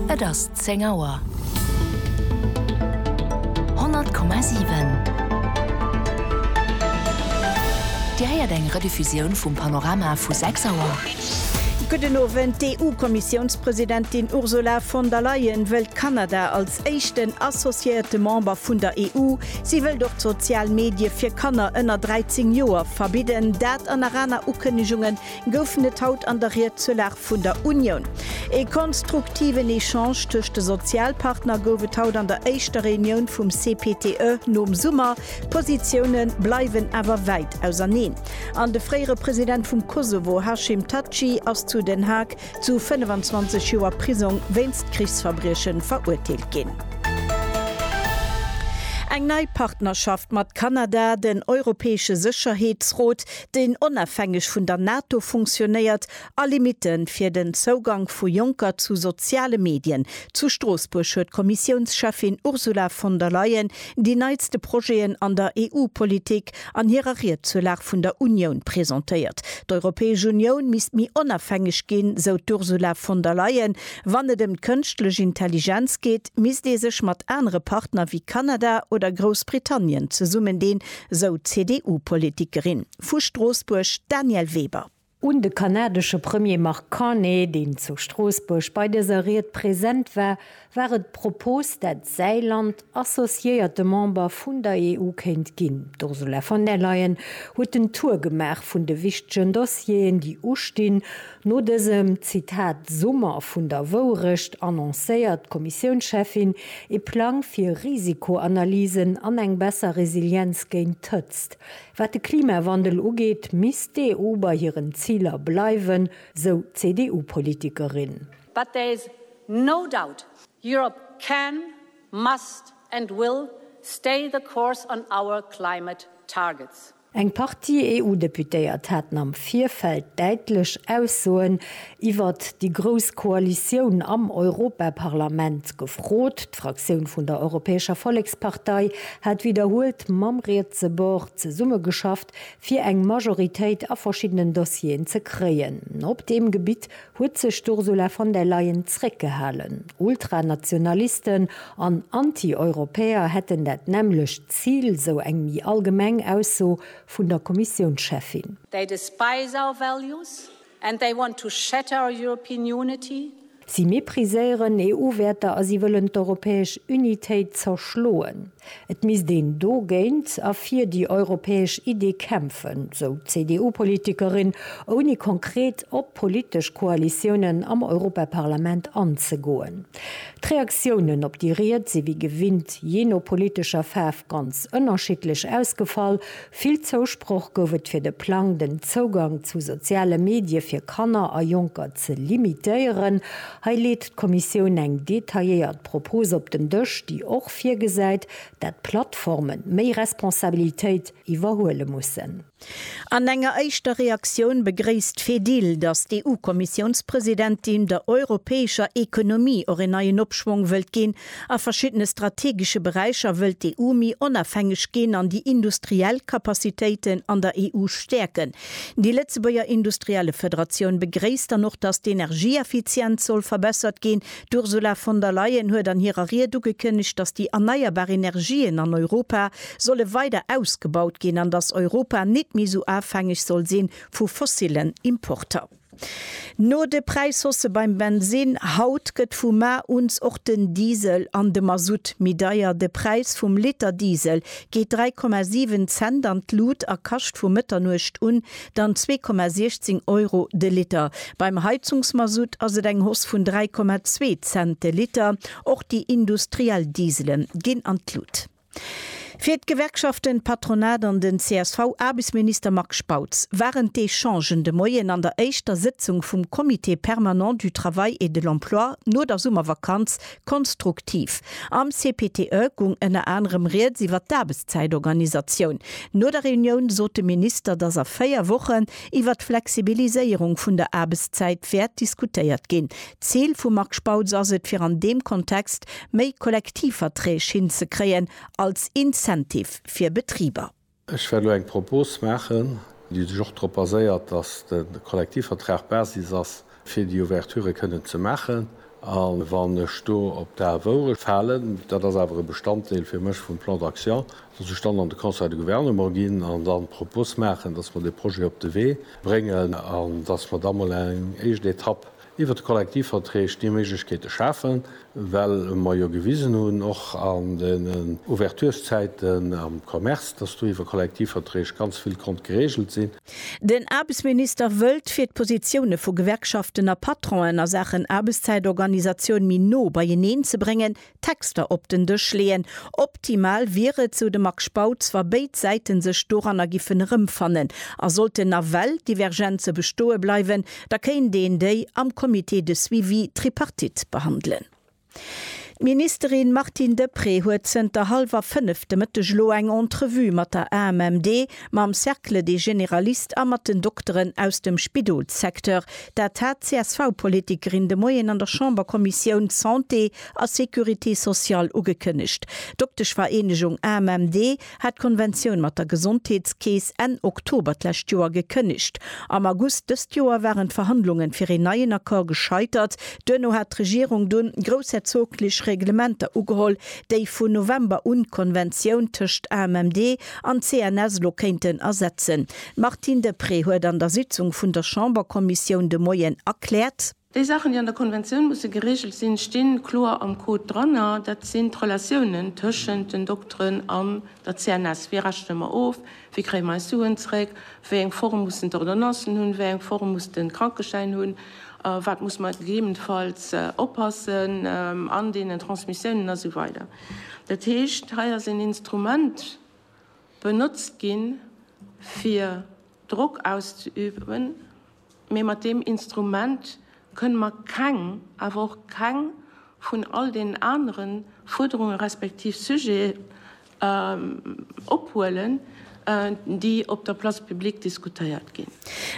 Et ass zéng Auer. 100,7 Dir héiert eng Rediffusioun vum Panorama vu 6 Auer. Gudden Owend, D'EU-Kommissiounspresidentin Ursula von der Leyen wëllt Kanada als éischten associéierte Member vun der EU. Si wëllt och d'sozial Medie fir Kanner ënner 13 Joer verbidden. Dat an nach aner Ukënnegungen. goufen et haut an der Ried zur Lag vun der Unioun. Ee konstruktiven Echange tëscht de Sozialpartner gouf et haut an der éischter Reunioun vum CPTE nom Summer. D'Positioune bleiwen awer wäit auserneen an de fréiere President vum Kosovo Hashim Thaçi ass zu Den Haag zu 25 Joer Prisong wéinst Krichsverbrieche verurteelt ginn. Eng nei Partnerschaft mat Kanada, den Europäesche Sécherheetsrot, deen onafhängeg vun der NATO funktionéiert, a Limite fir den Zougank vu Jonker zu soziale Medien. Zu Stroossbuerg huet d'Kommissiounscheffin Ursula von der Leyen déi neitste Projeten an der EU-Politik an hirer Ried zur Lag vun der Unioun presentéiert. D'Europäesch Unioun misst méi onafhängeg ginn, sou d'Ursula von der Leyen. Wann et ëm d'Kënschtlech Intelligenz geet, misst ee sech mat anere Partner wéi Kanada oder Groussbritannien zesummendeen, Esou d'CDU-Politikerin vu Stroossbuerg, d'Danièle Weber. Un de kanadesche Premier Mark Carney, deen zu Stroossbuerg bei dëser Ried present war, war et d'Propos, dat säi Land associéierte Member vun der EU kéint ginn. D'Ursula von der Leyen huet en Tour gemaach vun de wichtegen Dossieren, déi ustinn. No dësem Zitat Summer vun der Wourecht annoncéiert d'Kommissiounscheffin ee Plang fir Risikoanalysen an eng besser Resilienz géint d'Hëtzt. Wat de Klimawandel ugeet, misst d'EU bei hiren Ziler bleiwen, sou d'CDU-Politikerin. But there is no doubt Europe can, must and will stay the course on our climate targets. Eng Partie EU-Deputéiert haten am Virfeld däitlech Aussoen iwwert déi grouss Koalitioun am Europaparlament gefrot. D'Fraktioun vun der Europäescher Vollekspartei hat widderhuelt mam rietse Bord zesummegeschafft, fir eng Majoritéit a verschiddenen Dossieren ze kréien. Op deem Gebitt huet sech d'Ursula von der Leyen zréckgehalen. Ultranationalisten an Anti-Europäer hätten dat nämmlecht Zil, sou eng méi allgemeng Ausso vun der Kommissiounscheffin. They despise our values and they want to shatter our European unity. Si mepriséieren EU-Wäerter a si wëllen d'europäesch Unitéit zerschloen. Et misst een dogéint a fir déi europäesch Iddi kämpfen, sou d'CDU-Politikerin, ouni konkret op politesch Koalitiounen am Europaparlament anzegoen. D'Reaktiounen op déi Ried si wéi gewinnt jee no politescher Faarf ganz ënnerschiddlech ausgefall. Vill Zousproch gouf et fir de Plang, den Zougang zu soziale Medie fir Kanner a Jonker ze limitéieren. Hei leet d'Kommissioun eng detailléiert Propos op den Dësch, déi och, virgesäit, dat d'Plattforme méi Responsabilitéit iwwerhuele mussen. An enger éischter Reaktioun begréisst d'Fedil, datt d'EU-Kommissiounspresidentin der europäescher Ekonomie och een neien Opschwong wëllt ginn. A verschiddene strategesche Beräicher wëllt d'EU méi onafhängeg ginn an déi industriell Capacitéiten an der EU stäerken. Déi Lëtzebuerger Industriellefederatioun begréisst dann och, datt d'Energieeffizienz soll verbessert ginn. D'Ursula von der Leyen huet an hirer Ried ugekënnegt, datt déi erneierbar Energien an Europa solle weider ausgebaut ginn an datt Europa nit méi esou afhängeg soll sinn vu fossillen Importer. No de Präishausse beim Bensinn haut gëtt vu mar uns och den Diesel an de Masutt méi deier. De Präis vum Liter Diesel geet 3,7 Cent an d'Lut a kascht vu Mëtternuecht un dann 2,16 Euro de Liter. Beim Heizungsmasutt ass et eng Hausse vun 3,2 Cent de Liter. Och déi industriell Diesele ginn an d'Lut. Fir d'Gewerkschaften, d'Patronat an den CSV-Aarbechtsminister Marc Spautz waren d'Echangen de Moien an der éischter Sëtzung vum Comité permanent du travail et de l'emploi no der Summervakanz Konstruktiv. Am CPTE gung ënner anerem rieds iwwer d'Aarbechtszäitorganisatioun. No der Reunioun sot de Minister, datt a véier Wochen iwwer d'Flexibiliséierung vun der Aarbechtszäit wäert diskutéiert ginn. D'Zil vum Marc Spautz ass et, fir an deem Kontext méi Kollektivverträg hinzekréien als Incentive fir Betriber. Ech wäert elo eng Propos maachen, déi sech och drop baséiert, dass de Kollektivvertrag d'Basis ass, fir déi Ouverture kënnen ze maachen. A wann ech do op d'Ae Woure falen, dat ass awer e Bestanddeel fir mech vum Plan d'action, dass ech dann an de Conseil de Gouvernement ginn an dann d'Propos maachen, dass mer dee Projet op de Wee bréngen an dass mer da mol eng éischt Etapp Iwwert d'Kollektivverträg déi Méiglechkeete schafen, well mer jo gewisen hunn, och an den Ouverturszäiten am Commerce, dass do iwwer Kollektivverträg ganz vill konnt geregelt sinn. Den Aarbechtsminister wëllt, fir d'Positioune vu Gewerkschaften a Patronen a Saachen Aarbechtszäitorganisatioun méi no beieneen ze bréngen, Texter op den Dësch leeën. Optimal wier et, sou de Marc Spautz, wa béid Säite sech doranner giffen erëmfannen. A sollten nawell Divergenze bestoe bleiwen, da kéint een déi am Comité de suivi tripartite behandelen. D'Ministerin Martine Deprez huet zënter hallwer fënnef de Mëtteg elo eng Entrevue mat der AMMD, mam Cercle des généralistes a mat den Dokteren aus dem Spidolssecteur. Dat hat d'CSV-Politikerin de Moien an der Chamberkommissioun Santé a Sécurité sociale ugekënnegt. D'Dokteschvereenegung AMMD hat d'Konventioun mat der Gesondheetskeess Enn Oktober d'lescht Joer gekënnegt. Am August dëst Joer waren d'Verhandlungen fir een neien Accord gescheitert. Duerno hat d'Regierung dunn groussherzoglech Reglementer ugeholl, déi vun November un d'Konventioun tëscht AMMD an CNS lo kéinten ersetzen. D'Martine Deprez huet an der Sitzung vun der Chamberkommissioun de Moien erkläert, Déi Saachen, déi an der Konventioun musse geregelt sinn, sti kloer am Code dranner. Dat sinn d'Relatiounen tëschent den Dokteren an der CNS. Wéi rechne mer of? Wéi kréie mer eis Suen zeréck? Wéi eng Form mussen d'Ordonnancen hunn? Wéi eng Form muss de Krankeschäin hunn? Op wat muss mer gegebenfalls oppassen an deenen Transmissiounen a sou weider? Dat heescht, hei ass een Instrument benotzt ginn, fir Drock auszeüben. Mee mat deem Instrument kënne mer keng, awer och keng vun all deenen anere Fuerderunge respektiv Sujete ophuelen, déi op der Place publique diskutéiert ginn.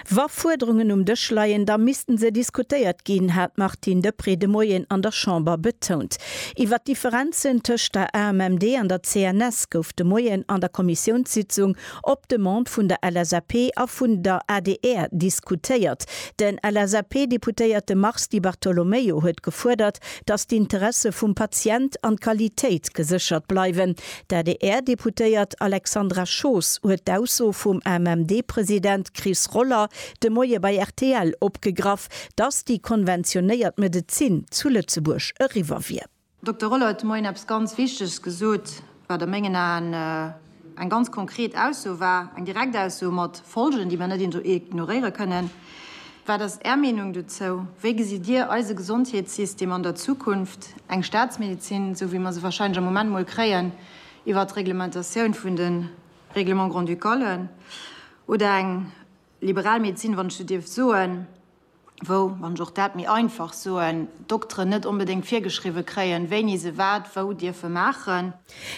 Wa Fuerderungen um Dësch leien, da misste se diskutéiert ginn, hat d'Martine Deprez de Moien an der Chamber betount. Iwwer d'Differenzen tëscht der AMMD an der CNS gouf de Moien an der Kommissiounssitzung Op Demande vun der LSAP a vun der adr diskutéiert. De LSAP-Deputéierte Mars Di Bartolomeo huet gefuerdert, datt d'Interesse vum Patient an d'Qualitéit geséchert bleiwen. D'ADR-Deputéiert Alexandra Schoos huet d'Ausso vum AMMD-President Chris Roller de Moie bei rtl opgegraff, datt déi konventionéiert Medezin zu Lëtzebuerg eriwwer wier. Dokter Rolle huet de Moien eppes ganz Wichteges gesot, wat a mengen Aen eng ganz konkret Ausso war, eng direkt Ausso mat Folgen, déi mer net ignoréiere kënnen. Wat ass Är Meenung dozou? Wéi gesitt Dir eise Gesondheetssystem an der Zukunft? Eng Staatsmedezin, esou wéi mer se warscheinlech am Moment mol kréien iwwert d'Reglementatioun vun de Règlements grand-ducales, oder eng liberal Medezin, wann ech esou dierf soen? wou, wann ech och dat méi einfach soen, d'Dokteren net onbedéngt virgeschriwwe kréien, wéini se wat wou dierfe maachen.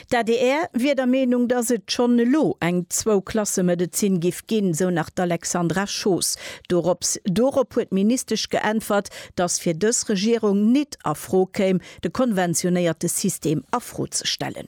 D'adr wier der Meenung, datt et schonn elo eng Zwou-Klasse-Medezin giff ginn, esou nach d'Alexandra Schoos. Dorops dorop huet d'Ministesch geäntwert, datt fir dës Regierung nit a Fro kéim, de konventionéierte System a Fro ze stellen.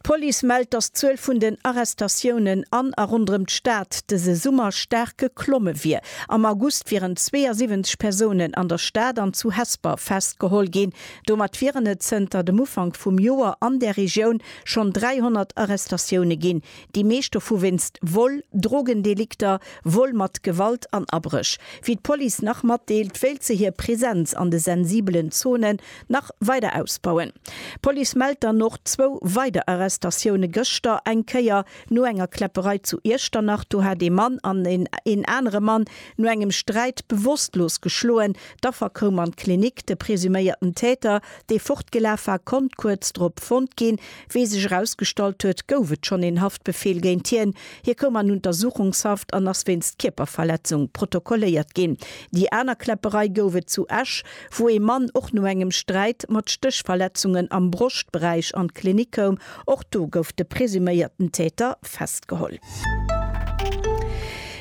D'Police mellt, dass d'Zuel vun den Arrestatiounen an a ronderëm d'Stad dëse Summer staark geklomme wier. Am August wieren 72 Persounen an der Stad an zu Hesper festgeholl ginn. Domat wieren et zënter dem Ufank vum Joer an där Regioun schonn 300 Arrestatioune ginn, déi meescht dovu wéinst Vol, Drogendelikter, Vol mat Gewalt an Abréch. Wéi d'Police nach matdeelt, wéilt se hir Presenz an de sensibelen Zonen nach weider ausbauen. D'Police mellt dann och zwou weider Arrestatioune gëschter, eng Kéier no enger Kläpperei zu Iechternach, do hat ee Mann an een anere Mann no engem Sträit bewosstlos geschloen. D'Affer koum an d'Klinik. De presuméierten Täter, dee fortgelaf war, konnt kuerz drop fonnt ginn. Wéi sech erausgestallt huet, gouf et schonn een Haftbefeel géint hien. Hie koum an Untersuchungshaft an ass wéinst Kierperverletzung protokolléiert ginn. Déi aner Kläpperei gouf et zu Esch. wou ee Mann och no engem Sträit mat Stéchverletzungen am Broschtberäich an d'Klinik koum. Och do gouf de presuméierten Täter festgeholl.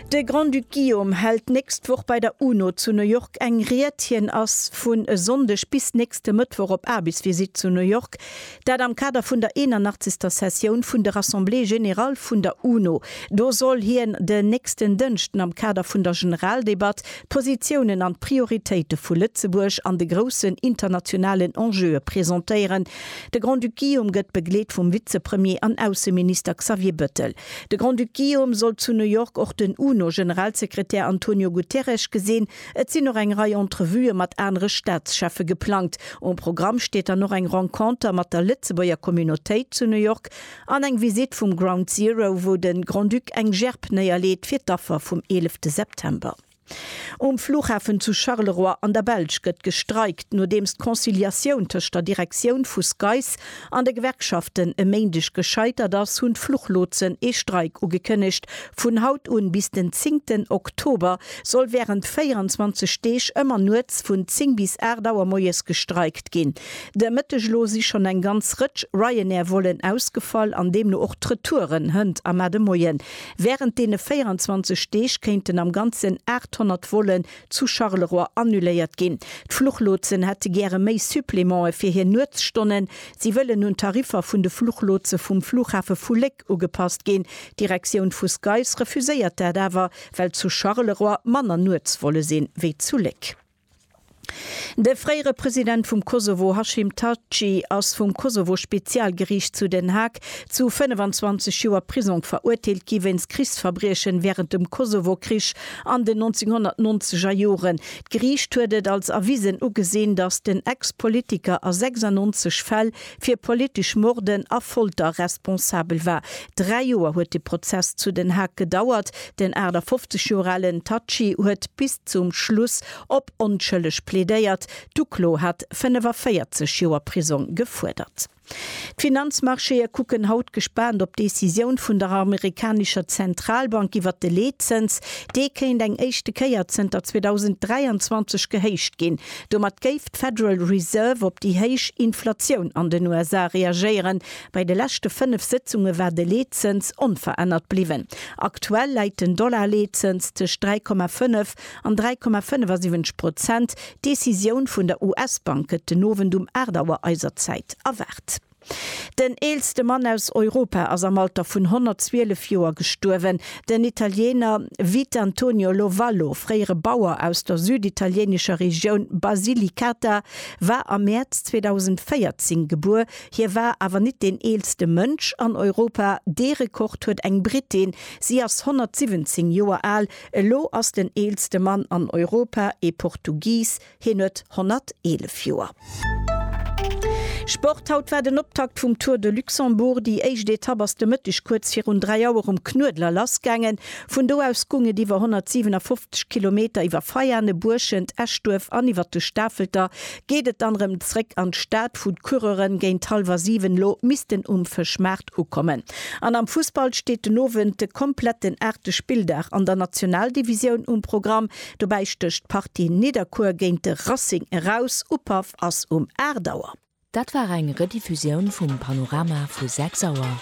De Grand-Duc Guillaume hält d'nächst Woch bei der UNO zu New York eng Ried. Hien ass vun e Sonndeg bis nächste Mëttwoch op Aarbechtsvisitt zu New York. Dat am Kader vun der 81. Sessioun vun de Rassemblées générales vun der UNO. Do soll hien den nächsten Dënschden am Kader vun der Generaldebatt d'Positiounen an d'Prioritéite vu Lëtzebuerg an de groussen internationalen Enjeue presentéieren. De Grand-Duc Guillaume gëtt begleet vum Vizepremier an Ausseminister Xavier Bëttel. De Grand-Duc Guillaume soll zu New York och den UNO-Generalsekretär Antonio Guterres gesinn. Et sinn och eng Rei Entrevuë mat anere Staatscheffe geplangt. Um Programm steet dann och eng Renconter mat der Lëtzebuerger Communautéit zu New York an eng Visitt vum Ground Zero, wou de Grand-Duc eng Gerb néierleet fir d'Affer vum 11 September. Um Flughafen zu Charleroi an der Belsch gëtt gestreikt, nodeems d'Conciliatioun tëscht der Direktioun vu SCAIS an de Gewerkschaften e Méindeg gescheitert ass, hunn d'Fluchlotsen ee Streik ugekënnegt. Vun haut un bis den zéngten Oktober soll wärend 24 Deeg ëmmer nuets vun 10 bis 8 Auer moies gestreikt ginn. De Mëtteg elo si schonn eng ganz Rëtsch Ryanair-Vollen ausgefall an deemno och d'Retouren. Hënt a Mar de Moien. Wärend deene 24 Deeg kéinten am Ganzen 800 Vollen zu Charleroi annuléiert ginn. D'Fluchlotsen hätte gäre méi Supplemente fir hir Nuetsstonnen. Si wëllen un d'Tariffer vun de Fluchlotse vum Flughafe vu Léck ugepasst ginn. D'Direktioun vu SCAIS refuséiert dat awer, well zu Charleroi manner Nuetsvolle sinn, wéi zu Léck. De fréiere President vum Kosovo Hashim Thaçi ass vum Kosovo-Spezialgeriicht zu Den Haag Zu 25 Joer Prisong verurteelt gi wéinst Krichsverbriechen wärend dem Kosovo-Krich an den 1990 er Joren. D'Geriicht huet et als erwisen ugesinn, datt den Ex-Politiker a 96 Fäll fir politesch Morden a Folter responsabel war. Dräi Joer huet de Prozess zu Den Haag gedauert. Den 58 Joer alen Thaçi huet bis zum Schluss op onschëlleg plädéiert. D'Uklo hat 45 Joer Prisong gefuerdert. D'Finanzmarchéë kucken haut gespaant op d'Decisioun vun der amerikanescher Zentralbank iwwer de Leetzëns. Dee kéint eng éischte Kéier zënter 2023 gehéicht ginn. Domat géif d'Federal Reserve op déi héich Inflatioun an den USA reagéieren. Bei de leschte fënnef Sëtzunge war de Leetzëns onverännert bliwwen. Aktuell läit den Dollar-Leetzëns tëscht 3,5 An 3,75 Prozent. D'Decisioun vun der US-Bank gëtt den Owend um 8 Auer eiser Zäit erwaart. Den eelste Mann aus Europa ass am Alter vun 112 Joer gestuerwen. Den Italiener Vitantonio Lovallo, fréiere Bauer aus der süditalieenescher Regioun Basilicata, war am Mäerz 2014 gebuer. Hie war awer nit deen eelste Mënsch an Europa, dee Rekord huet eng Brittin. Si ass 117 Joer al. Elo ass den eelste Mann an Europa ee Portugies, hien huet 111 Joer. Sport, Haut war den Optakt vum Tour de Luxembourg. Déi éischt Etapp ass de Mëtteg kuerz virun 3 Auer um Knuedler lassgaangen. Vun do aus goung et iwwer 157 Kilometer iwwer Veiane, Buerschent, Eschduerf an iwwer de Stafelter geet et dann erëm zréck an d'Stad, wou d'Coureuren géint hallwer 7 lo missten um Fëschmaart Start ukommen. An am Fussball steet den Owend de kompletten aachte Spilldag an der Nationaldivisioun um Programm. Dobäi stécht d'Partie Nidderkuer géint de Racing eraus. Upaff ass um 8 Auer. Dat war eng Rediffusioun vum Panorama vu 6 Auer.